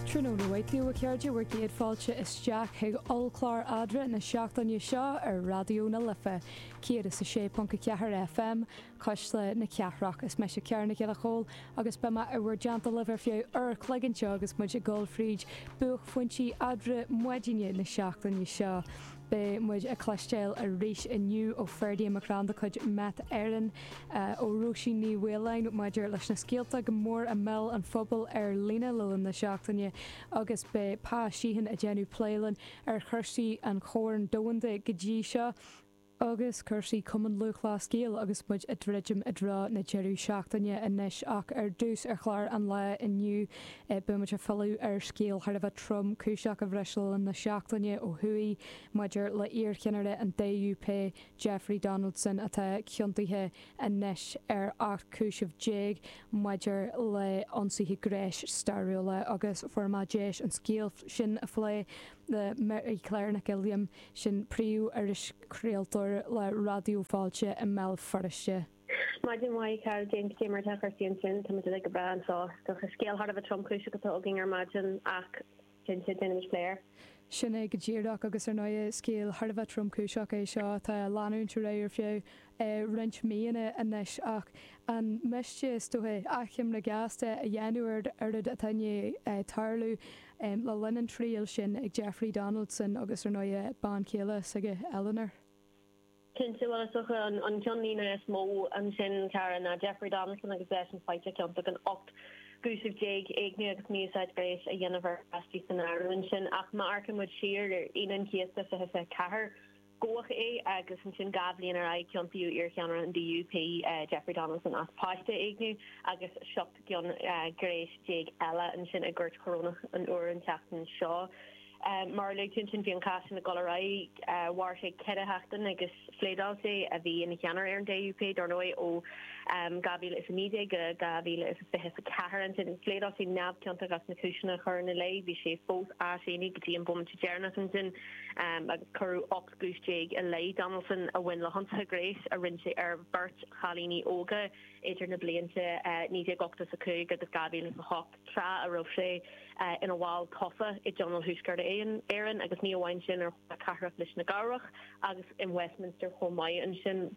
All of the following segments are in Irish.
Tráthnóna mhaith daoibh, a chairde, bhur gcéad fáilte isteach chuig ollchlár eadra na seachtaine seo ar Raidió na Life 106.4 FM, cuisle na cathrach. Is meise Ciara Nic Giolla Chomhaill agus beidh mé i bhur dteannta libh ar feadh uair an chloig anseo agus muid ag dul fríd buachphointí eadra maidine na seachtaine seo. Beidh muid ag cloisteáil arís inniu ó Ferdia McCrann de chuid Met Éireann, ó Róisín Ní Mhaoláin maidir leis na scéalta go mór i mbéal an phobail ar líne le linn na seachtaine agus beidh Pa Sheehan ag déanamh plé linn ar chúrsaí an Choirn Domhanda go dtí seo agus cúrsaí Cumann Lúthchleas Gael agus muid ag druidim i dtreo na deireadh seachtaine anois ach ar dtús ar chlár an lae inniu Beidh muid ag filleadh ar scéal thar a bheith tromchúiseach a bhris le linn na seachtaine ó thuaidh maidir le iarcheannaire an DUP, Jeffrey Donaldson, atá ciontaithe anois ar 18 cúiseamh maidir le ionsaithe gnéis stairiúla agus fuair mé deis an scéal sin a phlé le Mary Claire Nic Uilliam, sin príomh-irischraoltóir le Raidió Fáilte i mBéal Feirste. Maidin mhaith, Ciara, cad é mar atá cúrsaí ansin? Táimid uilig go breá anseo ach scéal thar a bheith tromchúiseach atá againn ar maidin ach cinnte, déanfaimid plé air. Sin é go díreach agus ar ndóighe scéal thar a bheith tromchúiseach é seo atá ag leanúint ar aghaidh ar feadh roinnt míonna anois ach an miste, is dóiche, achoimre ghasta a dhéanamh ar an oiread atá i ndiaidh tarlú le linn an triail sin ag Jeffrey Donaldson agus ar ndóighe bean chéile s'aige, Eleanor. Cinnte, bhuel, is dócha an ceannlíne is mó ansin, Ciara, ná Jeffrey Donaldson agus eisean faighte ciontach in 18 gcúiseamh, éigniú agus mí-úsáid ghnéis a dhéanamh ar pháistí san áireamh ansin. Ach má amharcann muid siar ar Aoine an Chéasta 2024, gabhadh é agus ansin dhá bhliain ar aghaidh ciontaíodh iarcheannaire an DUP, Jeffrey Donaldson as páiste a éigniú agus 17 gcion gnéis eile ansin i gCúirt Chorónach an Iúir an tseachtain seo. Mar a luaigh tú ansin bhí an cás sin ag dul ar aghaidh, mhair sé ceithre sheachtain agus phléadáil sé, a bhí ina cheannaire ar an DUP dar ndóigh, ó 2019 go 2024. Ansin phléadáil sé neamhchiontach as na cúiseanna a cuireadh ina leith, bhí sé fós á shéanadh go dtí an bomaite deireanach ansin agus cuireadh 18 gcúis i leith Donaldson a bhain le hionsaithe gnéis a rinne sé ar bheirt chailíní óga idir na blianta 1985 agus 2008. tráth a raibh sé ina bhall tofa i dTionól Thuaisceart Éireann, agus ní amháin sin, ar Chomhairle Cathrach Lios na gCearrbhach agus in Westminster chomh maith. Ansin,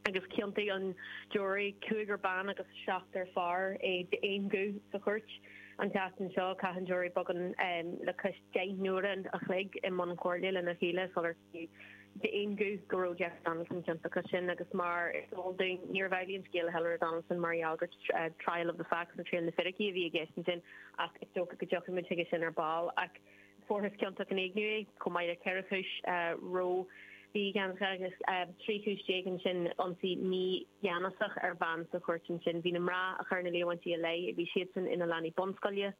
agus chiontaigh an giúiré, cúigear ban agus seachtar fear, é d'aon ghuth sa chúirt. An tseachtain seo, chaith an giúiré beagán le cois deich n-uaire an chloig i mbun comhairle lena chéile sular. d'aon ghuth go raibh Jeffrey Donaldson ciontach ansin agus mar is eol dúinn níorbh amhlaidh an scéal le hEleanor Donaldson mar gheall gur trial of the facts nó triail na bhfíricí a bhí i gceist ansin ach is dócha go dtiocfaidh muid chuige sin ar ball. Ach fuarthas ciontach in éigniú é chomh maith le ceithre chúis reo bhí i gceannas aige agus trí chúis déag ansin ionsaí mígheanasach ar bhean sa chúirt ansin. Bhí na mná a chuir na líomhaintí ina leith, bhí siadsan ina leanaí bunscoile,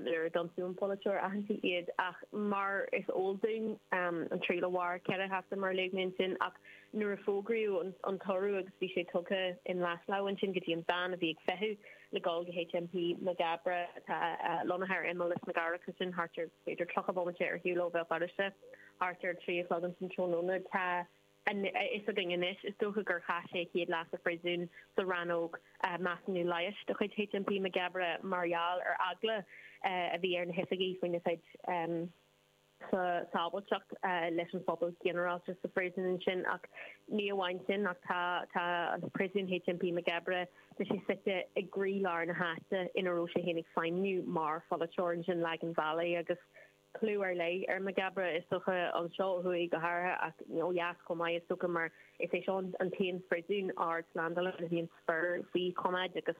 nuair a d'ionsaigh an polaiteoir aitheanta iad ach mar is eol dúinn an triail a mhair ceithre sheachtain mar a léigh mé ansin ach nuair a fógraíodh an toradh bhí sé tugtha i nglais lámh ansin go dtí an veain a bhí ag feitheamh le dul go HMP Maghaberry atá lonnaithe ar imeall Lios na gCearrbhach ansin thart ar b'fhéidir 30 bomaite ar shiúl ó Bhéal Feirste thart ar a trí a chlog ansin tráthnóna tá a fhios againn anois, is dócha gur chaith sé a chéad lá sa phríosún sa rannóg measúnaithe leighis de chuid HMP Maghaberry mar gheall ar eagla a bhí ar na hoifigigh faoina chuid sábháilteacht leis an phobal ginearálta sa phríosún ansin. Ach ní amháin sin ach tá an príosún HMP Maghaberry, tá sé suite i gcroí lár na háite ina raibh sé féin ag feidhmniú mar pholaiteoir ansin, Lagan Valley agus tá clú ar leith ar Maghaberry, is dócha, anseo ó thuaidh go háirithe ach ó dheas chomh maith, is dócha, mar is é seo an t-aon phríosún ardslándála a mbíonn fir faoi choimeád agus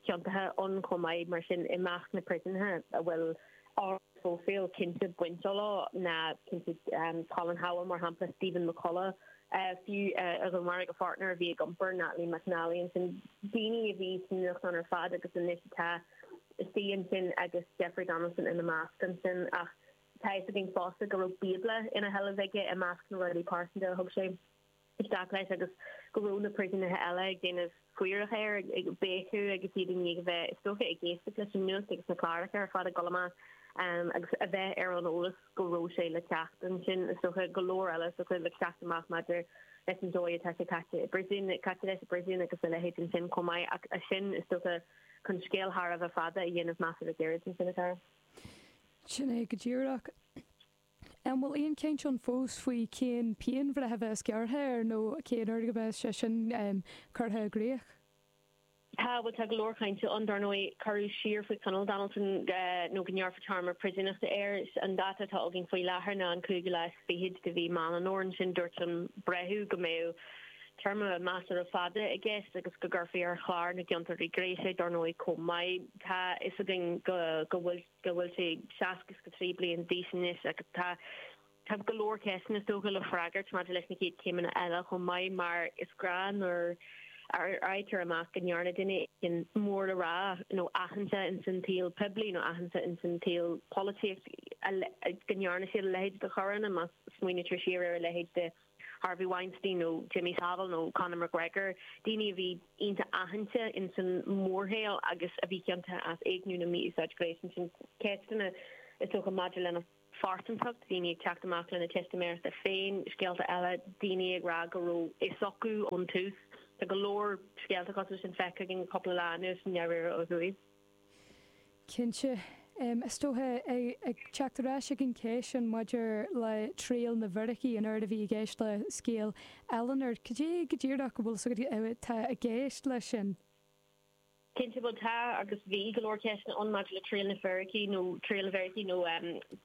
ciontaithe ann chomh maith. Mar sin, i measc na bpríosúnaithe a bhfuil ardphróifíl cinnte bainte leo tá cinnte Colin Howell, mar shampla, Stephen McCullagh, fiú, a dhúnmharaigh a pháirtnéir a bhí ag iompar, Natalie McNally, ansin daoine a bhí sa nuacht ar fad agus anois atá istigh ansin agus Jeffrey Donaldson ina measc ansin ach tá a fhios againn fosta go raibh bíobla ina sheilbh aige i measc na rudaí pearsanta a thug sé isteach leis agus go raibh na príosúnaithe eile ag déanamh faire air, ag béiceadh agus iad i ndiaidh a bheith is dóiche ag éisteacht leis an nuacht agus na cláracha ar fad ag dul amach agus a bheith ar an eolas go raibh sé le teacht ansin is dóiche go leor eile le teacht amach maidir leis an dóigh a gcaitear leis i bpríosún agus a leithéid ansin chomh maith ach sin is dóiche. chun scéal thar a bheith fada a dhéanamh measartha gairid ansin a chara. Sin é go díreach. An bhfuil aon chaint ann fós faoi cén pianbhreith a bheas á gearradh air nó cén uair a mbeidh sé sin curtha i gcrích? Tá, bhuel tá go leor cainte ann. Dar ndóigh, cuireadh siar faoi choinneáil Donaldson nó go ngearrfar téarma príosúnachta air. An dáta atá againn faoi láthair ná an 25ú lá de mhí Meán an Fhómhair ansin. dúirt an breitheamh go mbeadh téarma measartha fada i gceist agus go gcuirfí ar chlár na gciontóirí gnéis é. Dar ndóigh chomh maith tá fhios againn go bhfuil sé seasca is go trí bliain d'aois anois agus tá tá go leor ceisteanna is dócha le freagairt maidir leis na chéad céimeanna eile chomh maith mar is gnách nuair a fhaightear amach go ndearna duine éigin mór le rá nó aitheanta in san tsaol poiblí nó aitheanta in san tsaol polaitíochta go ndearna siad a leithéid de choireanna má smaoinítear siar ar a leithéid de Harvey Weinstein nó Jimmy Savile nó Conor McGregor, daoine a bhí iontach aitheanta ins an mórshaol agus a bhí ciontach as éigniú nó mí-úsáid gnéis. Ansin ceisteanna is dócha maidir lena. phearsantacht, daoine ag teacht amach lena teistiméireachta féin, scéalta eile, daoine ag rá go raibh fhios acu ón tús. Tá go leor scéalta cosúil leis sin feicthe againn le cúpla lá anuas i ndáiríre ó thuaidh. Cinnte. Is dócha, ag teacht ar ais ag an cheist sin maidir le triail na bhfíricí, an oiread a bhí i gceist le scéal Eleanor, cad é go díreach a bhfuil fhios agat atá i gceist leis sin? Cinnte, bhuel tá agus bhí go leor ceisteanna ann maidir le triail na bhfíricí nó triail na bhfíricí nó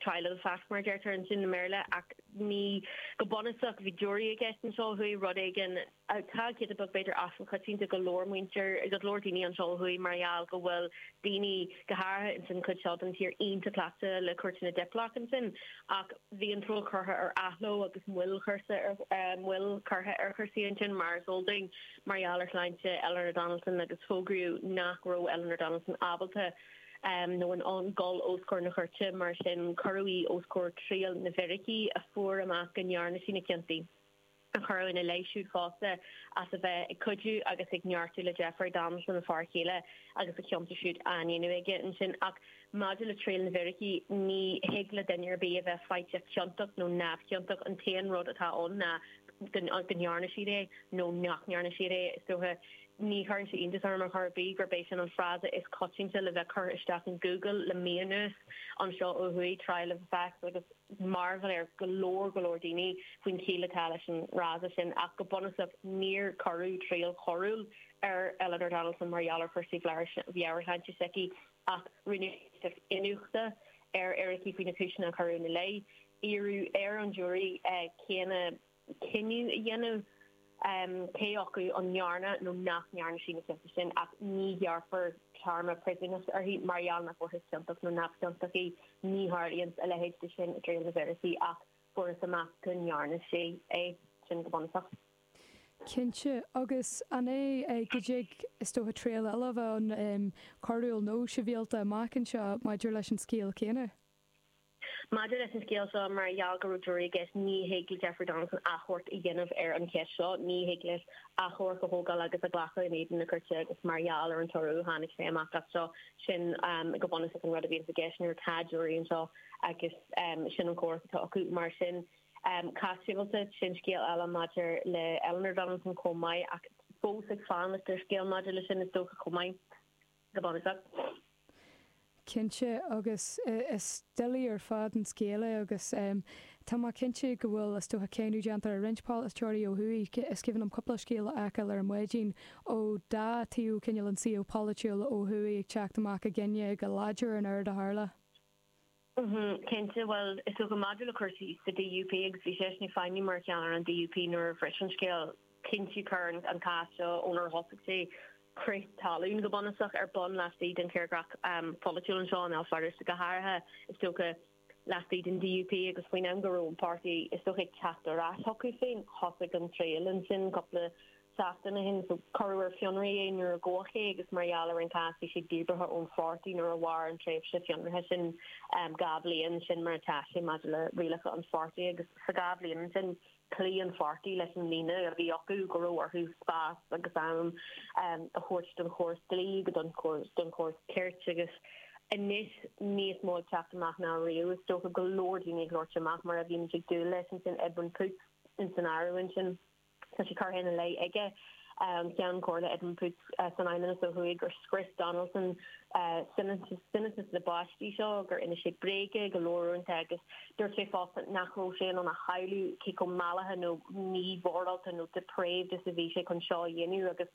trial of the fact mar a deirtear ansin i mBéarla ach ní, go bunúsach ní raibh jury i gceist anseo, ó thuaidh rud éigin atá giota beag b'fhéidir as an choitiantacht do go leor muintir, go leor daoine anseo ó thuaidh mar gheall go bhfuil daoine, go háirithe ins an chuid seo den tír, iontach cleachta le cúirteanna Diplock ansin ach bhí an triail curtha ar athló agus moill chursa ar, moill curtha ar chúrsaí ansin mar is eol dúinn mar gheall ar shláinte Eleanor Donaldson agus fógraíodh nach raibh Eleanor Donaldson ábalta nó in ann dul os comhair na cúirte mar sin cuireadh í os comhair triail na bhfíricí a fuair amach go ndearna sí na cionta. a cuireadh ina leith siúd fosta as a bheith ag cuidiú agus ag neartú le Jeffrey Donaldson, a fear chéile, agus na cionta siúd á ndéanamh aige ansin. Ach maidir le triail na bhfíricí, ní thig le duine ar bith a bheith faighte ciontach nó neamhchiontach, an t-aon rud atá ann ná go ndearna siad é nó nach ndearna siad é. Is dócha, ní chuireann sé iontas orm ar chor ar bith, gurb é sin an frása is coitianta le bheith curtha isteach in Google le mí anuas anseo ó thuaidh, trial of the facts agus. mearbhall ar go leor go leor daoine faoin chiall atá leis an fhrása sin, ach go bunúsach níor cuireadh triail choiriúil ar Eleanor Donaldson mar gheall ar chúrsaí meabhairshláinte s'aici ach rinneadh iniúchadh ar fhíricí faoi na cúiseanna a cuireadh ina leith. Iarradh ar an jury cé na. cinneadh a dhéanamh cé acu an ndearna nó nach ndearna sí na cionta sin, ach ní ghearrfar téarma príosúnachta uirthi mar gheall nach bhfuarthas ciontach nó neamhchiontach í. Ní tharlaíonn a leithéid de sin i dtriail na bhfíricí, ach fuarthas amach go ndearna sí é sin go bunúsach. Cinnte. Agus an é go dtig, is dócha, triail eile a bheith ann, coiriúil nó sibhialta, amach anseo maidir leis an scéal céanna? Maidir leis an scéal seo, mar gheall go raibh jury i gceist, ní thig le Jeffrey Donaldson achomharc a dhéanamh ar an cheist seo. Ní thig leis achomharc a thógáil agus a ghlacadh in éadan na cúirte agus mar gheall ar an toradh a tháinig sé amach as seo, sin go bunúsach an rud a bhíonns i gceist nuair atá jury anseo agus sin an chumhacht atá acu. Mar sin, cás sibhialta, sin scéal eile maidir le Eleanor Donaldson chomh maith ach fós ag fanacht ar scéal maidir leis sin is dócha chomh maith. Cinnte, agus is doiligh ar fad an scéal é agus tá mé cinnte go bhfuil, is dócha, cáineadh déanta ag roinnt polaiteoirí ó thuaidh. Is cuimhin liom cúpla scéal a fheiceáil ar maidin ón dá thaobh cineál an tsaoil pholaitiúil ó thuaidh ag teacht amach i gcoinne go láidir an rud a tharla. Mm-hm, cinnte, bhuel, is dócha maidir le cúrsaí sa DUP agus bhí seisean ag feidhmiú mar cheannaire an DUP nuair a bhris an scéal, cinnte chuir an cás seo ónar thosaigh sé crith talún go bunúsach ar bun laistigh den tírdhreach pholaitiúil anseo i mBéal Feirste go háirithe is dócha, laistigh den DUP agus faoin am go raibh an páirtí is dócha ag teacht ar ais chucu féin thosaigh an triail ansin cúpla seachtain ó shin. Cuireadh ar fionraí é nuair a gabhadh é agus mar gheall ar an gcás bhí sé díbeartha ón pháirtí nuair a mhair an tréimhse fionraithe sin dhá bhliain. Sin mar atá sé maidir le rialacha an pháirtí agus sa dhá bhliain ansin chloígh an pháirtí leis an líne a bhí acu go raibh orthu spás agus am a thabhairt don chóras dlí agus don chóras cirt agus anois níos mó ag teacht amach ná riamh is dócha go leor daoine ag labhairt amach mar a bhí muid ag dúil leis ansin Edwin Poots in san áireamh ansin. Tá sé curtha ina leith aige, an Ceann Comhairle Edwin Poots san Fheidhmeannas ó thuaidh, gur scrios Donaldson soineantas na bpáistí seo, gur inis sé bréaga go leor uaireanta agus dúirt sé fosta nach bhfuil sé in ann a shamhlú cé chomh mallaithe nó mímhorálta nó 'depraved' is a bhí sé chun seo a dhéanamh agus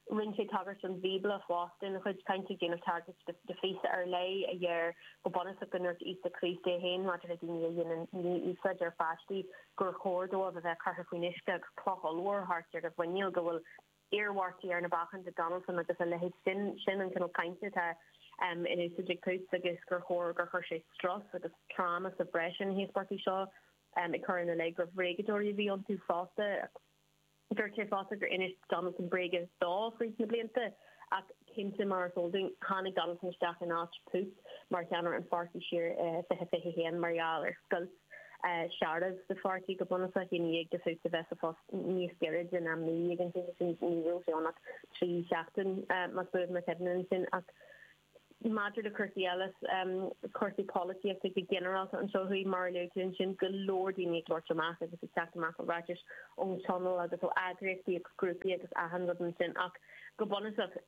Rinne sé tagairt don Bhíobla fosta ina chuid cainte, ag déanamh tagairt do phíosa ar leith a dheir go bunúsach go ndúirt Íosa Críost é féin maidir le daoine a dhéanann mí-úsáid ar pháistí gur chóir dóibh a bheith curtha faoin uisce agus cloch ollmhór thart ar a mhuiníl go bhfuil iarmhairtí ar na bacáin do Donaldson agus a leithéid. Sin sin an cineál cainte atá in úsáid ag Poots agus gur chóir gur chuir sé strus agus tráma sa bhreis ar na híospartaigh seo, ag cur ina leith gur bhréagadóirí a bhí iontu fosta. Dúirt sé fosta gur inis Donaldson bréaga dó fríd na blianta ach cinnte, mar is eol dúinn, tháinig Donaldson isteach in áit Poots mar cheannaire an pháirtí siar i 2021 mar gheall ar scoilt searbh sa pháirtí go bunúsach i ndiaidh do Poots a bheith sa phost níos giorra den am naoi dhéag. An tseachtain sin ní raibh sé ann ach trí seachtain, más buan mo chuimhne ansin, ach Maidir le cúrsaí eile, cúrsaí polaitíochta go ginearálta anseo thuaidh, mar a luaigh tú ansin, go leor daoine ag labhairt amach agus ag teacht amach le ráitis ón Tionól agus ó eagraíochtaí agus grúpaí agus achan rud ansin ach go bunúsach,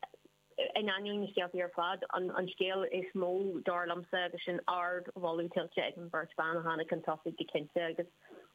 in ainneoin na scéaltaí ar fad, an scéal is mó, dar liomsa, agus sin ardmholadh tuillte ag an bheirt bhan a tháinig chun tosaigh go cinnte.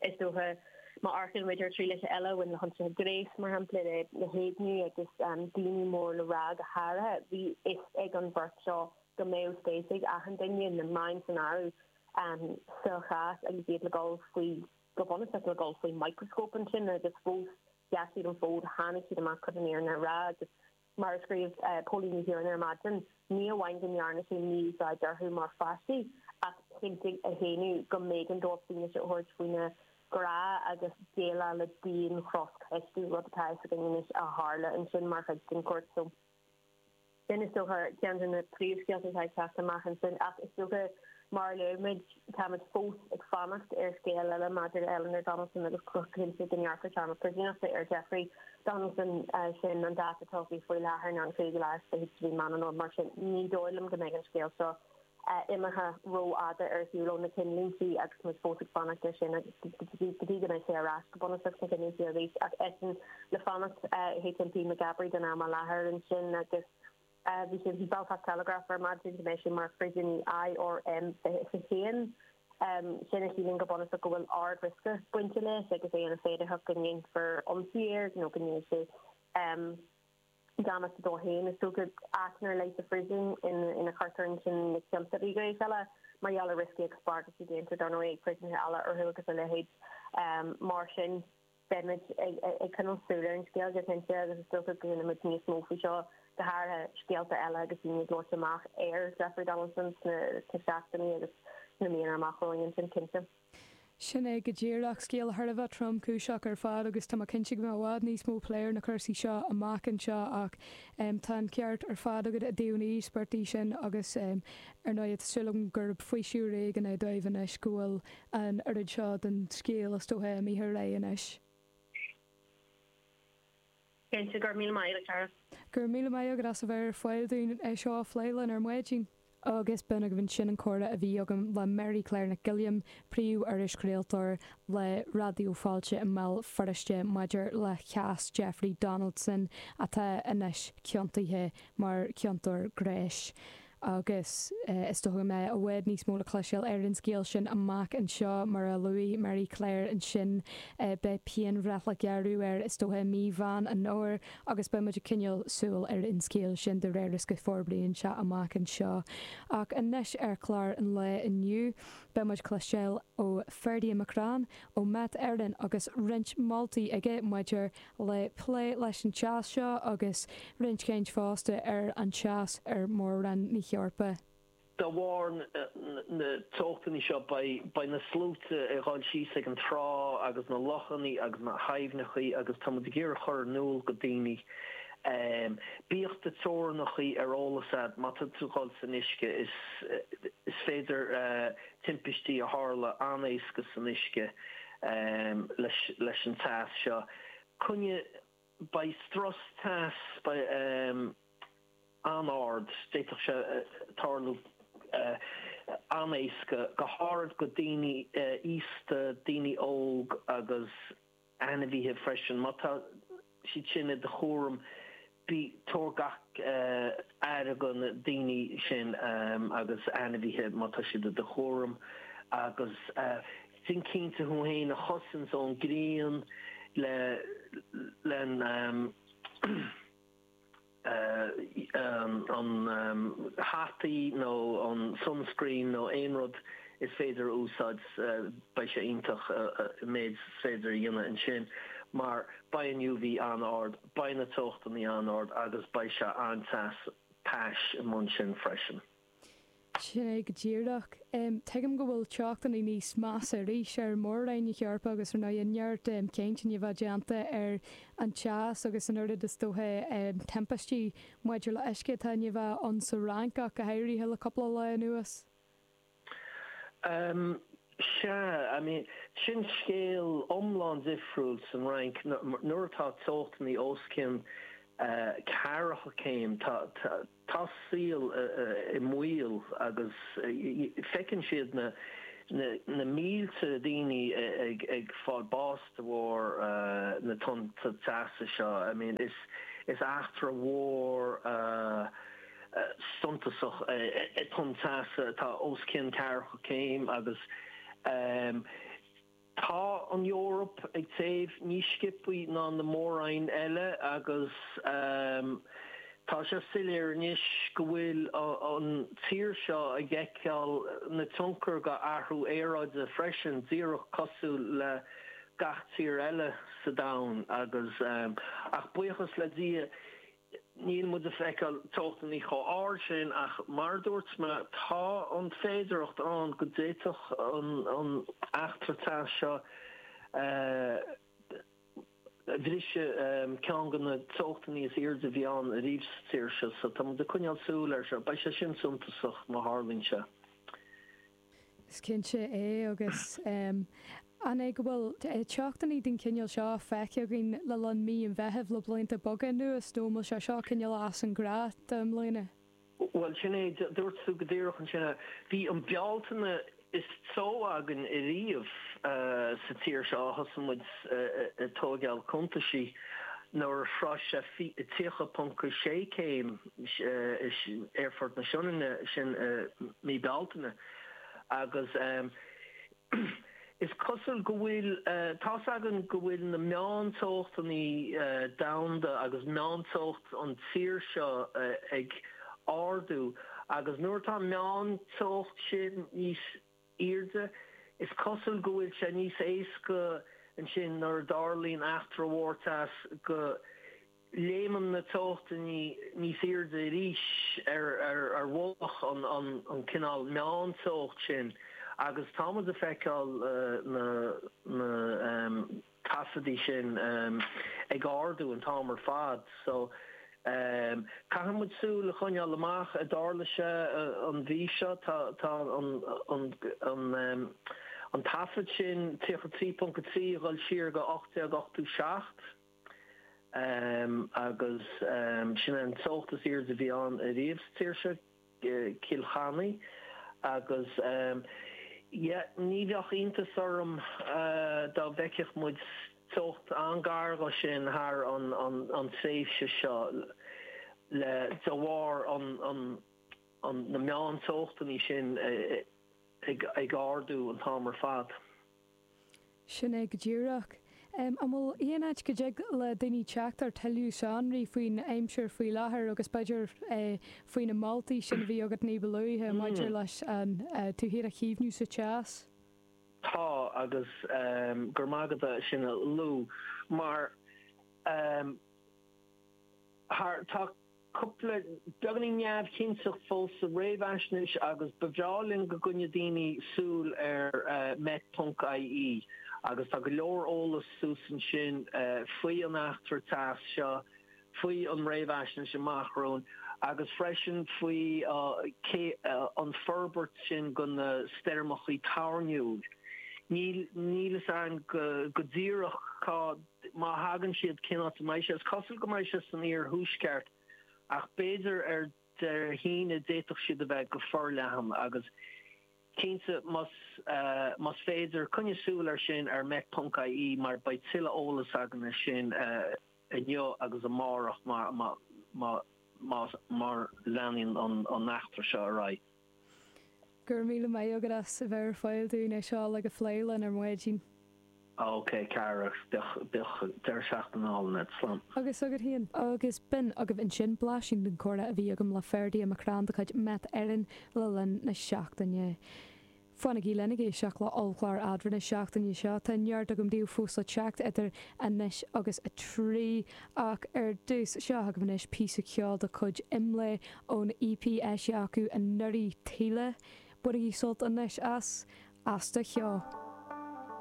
Is dócha, má amharcann muid ar thrialacha eile a bhain le hionsaithe gnéis, mar shampla, le héigniú agus daoine mór le rá, go háirithe, bhí fhios ag an bheirt seo go mbeadh spéis ag achan duine, na meáin san áireamh, sa chás agus iad le dul faoi, go bunúsach, le dul faoi mhicreascóp ansin agus fós, sheas siad an fód, tháinig siad amach chun an fhírinne a rá agus, Mar a scríobh Póilín Ní Chiaráin ar maidin, ní amháin go ndearna sé mí-úsáid orthu mar pháistí ach chinntigh a shéanadh go mb'éigean dóibh fianaise a thabhairt faoina gcrá agus déileáil le dian chroscheistiú, rud atá fhios againn anois a tharla ansin mar chuid den chúirt seo. Sin, is dócha, ceann de na príomhscéalta atá ag teacht amach ansin ach is dócha, Mar a luaigh muid, táimid fós ag fanacht ar scéal eile maidir le Eleanor Donaldson agus go cinnte go ngearrfar téarma príosúnachta ar Jeffrey Donaldson, sin an dáta atá socraithe faoi láthair ná an 5ú lá is fiche de mhí Mheán Fómhair, mar sin ní dóigh liom go mbeidh an scéal seo imithe ró-fhada ar shiúl ó na cinnlíntí agus muid fós ag fanacht ar sin go dtí go mbeidh sé ar ais go bunúsach sna cinnlíntí arís ach eisean le fanacht, HMP Maghaberry don am i láthair ansin agus. Bhí sa Belfast Telegraph ar maidin go mbeidh sé mar phríosúnaí IRM 1. Sin a chiallaíonn go bunúsach go bhfuil ard-riosca bainteach leis agus é ina féidearthacht go ndéanfar ionsaí air nó go ndéanfaidh sé damáiste dó féin. Is dócha áit ar leith sa phríosún ina gcuirtear ansin na ciontóirí gnéis eile mar gheall ar rioscaí agus bagairtí déanta, dar ndóigh, ag príosúnaithe eile orthu agus a leithéid. Mar sin. Beimid ag coinneal súil ar an scéal go cinnte agus is dócha go gcluinfimid níos mó faoi seo, go háirithe scéalta eile agus daoine ag labhairt amach ar Jeffrey Donaldson sna seachtainí agus sna míonna amach romhainn ansin cinnte. Sin é go díreach, scéal thar a bheith tromchúiseach ar fad agus tá mé cinnte go mbeidh i bhfad níos mó plé ar na cúrsaí seo amach anseo ach tá an ceart ar fad agat i dtaobh na n-íospartach sin agus ar ndóigh is dóigh liom gurb faoiseamh ar éigean é dóibh anois go bhfuil an oiread seo den scéal is dócha imithe ar aghaidh anois. Cinnte, go raibh míle maith agat, a Dara. Go raibh míle maith agat as a bheith ar fáil dúinn é seo a phlé linn ar maidin. Agus b'in agaibh ansin an comhrá a bhí agam le Mary Claire Nic Giolláin, príomh-irischraoltóir le Raidió Fáilte i mBéal Feirste maidir le cás Jeffrey Donaldson atá anois ciontaithe mar chiontóir gnéis. Agus is dóiche go mbeidh i bhfad níos mó le cloisteáil ar an scéal sin amach anseo. Mar a luaigh Mary Claire ansin, beidh pianbhreith le gearradh air is dóiche i mí Mheán an Fhómhair agus beidh muid ag coinneáil súil ar an scéal sin de réir is go forbraíonn sé amach anseo. Ach anois ar chlár an lae inniu, beidh muid ag cloisteáil ó Ferdia McCrann ó Met Éireann agus roinnt moltaí aige maidir le plé leis an teas seo agus roinnt caint fosta ar an teas ar Mhór-Roinn na hEorpa. De bharr na teochtannaí seo beidh na sluaite ag dhul síos ag an trá agus na lochannaí agus na haibhneachaí agus tá muid ag iarraidh chur in iúl go daoine bíodh do teorannacha ar eolas agat má tá tú ag dhul san uisce is féidir timpistí a tharla an-éasca san uisce leis an teas seo. Coinneoidh, beidh strus teas an-ard, d'fhéadfadh sé tarlú an-éasca, go háirid go daoine aosta, daoine óg agus. ainmhithe freisin. Má tá siad sin i do chúram bí tabhair gach aire go na daoine sin agus ainmhithe má tá siad i do chúram agus déan cinnte thú fhéin a chosaint ón grian leis an an hataí nó an sunscreen nó aon rud is féidir a úsáid beidh sé iontach an méid is féidir a dhéanamh ansin mar beidh an UV an-ard, beidh na teochtannaí an-ard agus beidh sé an-te is tais i mbun sin freisin. Sin é go díreach. Tuigim go bhfuil teochtannaí níos measa arís ar mhór-roinn na hEorpa agus ar ndóigh tá neart caint i ndiaidh a bheith déanta ar an teas agus an oiread is dóiche timpistí maidir le huisce atá i ndiaidh a bheith ann sa Fhrainc ach go háirithe le cúpla lá anuas. Sea, I mean, sin scéal iomlán difriúil san Fhrainc. Nuair atá teochtannaí os cionn ceathracha céim, Tá saol i mbaol agus feiceann siad na mílte daoine ag fáil bás de bharr na tonnta teasa seo. Is eachtra mhór suntasach é tonn teasa atá os cionn ceathracha céim agus. Tá an Eoraip ag téamh níos sciopthaí ná na mór-roinn eile agus tá sé soiléir anois go bhfuil an tír seo ag fheiceáil na tionchar go athrú aeráide freisin, díreach cosúil le gach tír eile sa domhan agus, ach buíochas le Dia, Níl muid a feiceáil teochtannaí chomh hard sin ach mar a dúirt mé tá an féidireacht ann go d'fhéadfadh an eachtra teas seo bhriseadh ceann go na teochtannaí is airde a bhí ann ariamh sa tír seo so tá muid ag coinneáil súil air seo. Beidh sé sin suntasach má tharlaíonn sé. Is cinnte é agus an é go bhfuil teochtannaí den chineál seo feicthe againn le linn mí an Mheithimh le blianta beaga anuas nó an bhfuil sé seo cineál as an ngnáth do i mbliana? Bhuel sin é, dúirt tú go díreach ansin. Bhí an Bealtaine is teo againn ariamh sa tír seo ó thosaigh muid ag tóigeáil cuntaisí nuair a shroich sé 30.6 céim. Aerfort na Sionainne sin i mí Bealtaine agus is cosúil go bhfuil a fhios againn go bhfuil na meáin teochtannaí domhanda agus meán teocht an tír seo ag ardú agus nuair atá an meán teocht sin níos airde. Is cosúil go bhfuil sé níos éasca ansin nuair a tharlaíonn eachtra mhór teas go léimeann na teochtannaí níos airde arís ar mhullach an cineál meán-teocht sin agus tá muid a feiceáil na taifeadaí sin ag ardú an t-am ar fad so caithfidh muid súil a choinneáil amach an dtarlóidh sé an mhí seo tá an taifead sin 33.3 ag dhul siar go 1887 agus sin é an teocht is airde a bhí ann ariamh sa tír seo. Cill Chainnigh agus yeah ní bheadh iontas orm dá bhfeicfeadh muid teocht an-ghar dhó sin thar an tréimhse seo le de bharr na meán teochtannaí sin ag ardú an t-am ar fad. Sin é go díreach. An bhfuil aon áit go dtig le daoine teacht ar tuilleadh sonraí faoin aimsir faoi láthair agus b'fhéidir faoi na moltaí sin a bhí agat ní ba luaithe maidir leis tú féin a chaomhnú sa teas? Tá agus go raibh maith agat é sin a lua mar tá cupla beagáinín neamhchinnteacht fóill sa réamhaisnéis agus ba bhreá linn go gcoinneodh daoine súil ar Met ponc IE agus tá go leor eolas suas ansin faoi an eachtra teas seo, faoi an réamhaisnéis amach romhainn agus freisin faoi an forbairt sin go na stoirmeachaí toirniúil. Níl fhios againn go díreach cá. Má thagann siad, cén áit a mbeidh sé? Is cosúil go mbeidh sé san iarthuaisceart ach b'fhéidir ar Dé hAoine d'fhéadfadh siad a bheith go forleathan agus cinnte más más féidir, coinnigh súil ar sin ar met.ie mar beidh tuilleadh eolas againn ar sin inniu agus amárach mar más mar leanann an eachtra seo ar aghaidh. Go raibh míle maith agat as a bheith ar fáil dúinn le é seo a phlé linn ar maidin. OK cara, bíodh deireadh seachtaine álainn a'd. Slán. Agus agat féin. Agus b'in agaibh ansin blaisín den comhrá a bhí agam le Ferdia McCrann de chuid Met Éireann le linn na seachtaine. Fanaigí linn ag éisteacht le ollchlár Eadrainn na seachtaine seo. Tá neart agam daoibh fós le teacht idir anois agus a trí, ach ar dtús, seo agaibh anois píosa ceoil de chuid Imlé ón EP a eisíodh acu anuraidh, Taoille. Bainigí sult anois as. As do Cheo.